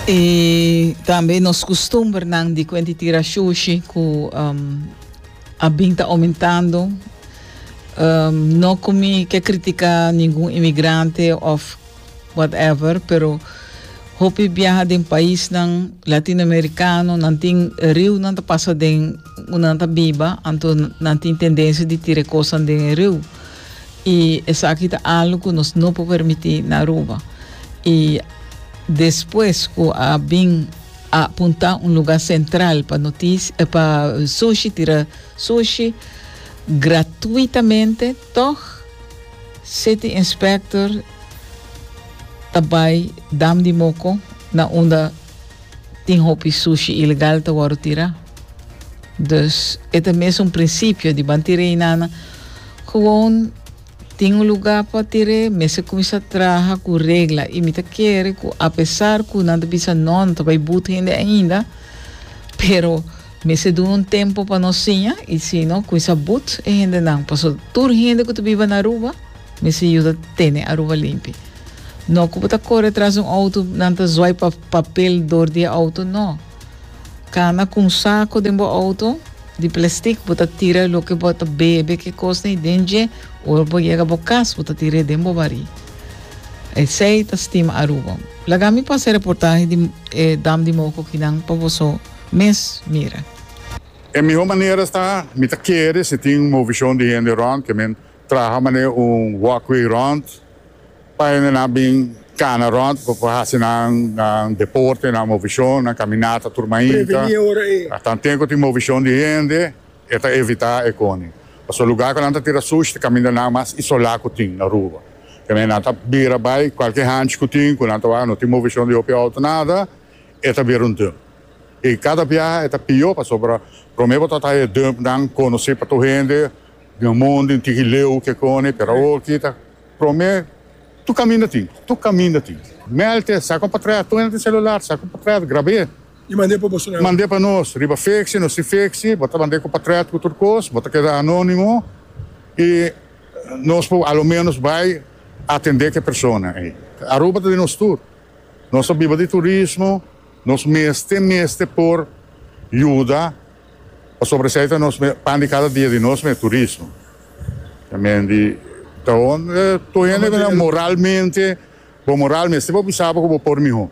Y tambe nos custumbernan di cuenti tira shushi cu um, a bin ta aumentando. Um, no cu mi ke critica ningun inmigrante of whatever, pero hopi biaha den paisnan Latinoamericano, nan tin riu nan ta pasa den unda nan ta biba, anto nan tin tendencia di tira e cosan den e riu. y esaki ta algo cu nos no por permiti na Aruba. Y despues cu a bin a punta un lugar central pa notici eh, pa sushi tira sushi gratuitamente, toch City Inspector ta bay dam di moco na unda Tin hopi sushi ilegal ta wòrdu tirá. Dus e ta mes un prinsipio di ban tir'é hinana. Gewoon tin un lugá pa tir'é mester kuminsá traha ku regla i mi ta kere ku apesar ku nan ta bisa nò nan ta bai but hende ainda pero mester duna un tempu pa nos siña i sino kuminsá but e hendenan pasobra tur hende ku ta biba na Aruba Mester yuda tene Aruba limpi. No cu bo ta core tras un auto, nan ta zuai pa papel door di e auto, no. Cana cu un saco den bo auto di plastic, bo ta tira loke bo ta bebe, ke cosnan y den dje, ora bo yega bo cas, bo ta tirae den bo bari. Esey ta stima Aruba. Laga mi pasa e reportahe di e dam di moco aki nan pa boso mes mira. E miho manera ta, mi ta kere si tin un movicion di hende rond, ke men Traha manera un walkway rond pa hende nan bin kana rond pa por hasi nan deporte, nan movishon, nan kaminata tur mai inka. Tan ten ku tin movishon di hende e ta evitá e koni. Pasobra lugá ku nan ta tira sushi ta kaminda nan mas isolá ku tin Aruba. Tene nan ta bira bai kualke hanchi ku tin ku nan ta wak no tin movishon di hopi outo nada e ta bira un dump. I kada biaha e ta pió pasobra promé bo ta traha e dumpnan konosí pa tur hende Dina mon den tiki leu ke koni pero awor kita prome tur kaminda tin tur kaminda tin melte sa kon pa trae ato ente celular sa kon pa trae grabe y mande pa boso mande pa nos riba fexi nos tin fexi bo ta mande kon pa trae tur tur kos bo ta keda anonimo y nos por a lo menos bay atende ke persona ey Aruba ta di nos tur nos ta biba di turismo nos mester mester por yuda. Pasobra esei ta nos pan di kada dia di nos mes, turismo. Tambe di ta hon tur hende ta moralmente, bo moral mester pa bisa bo ku bo por mihó.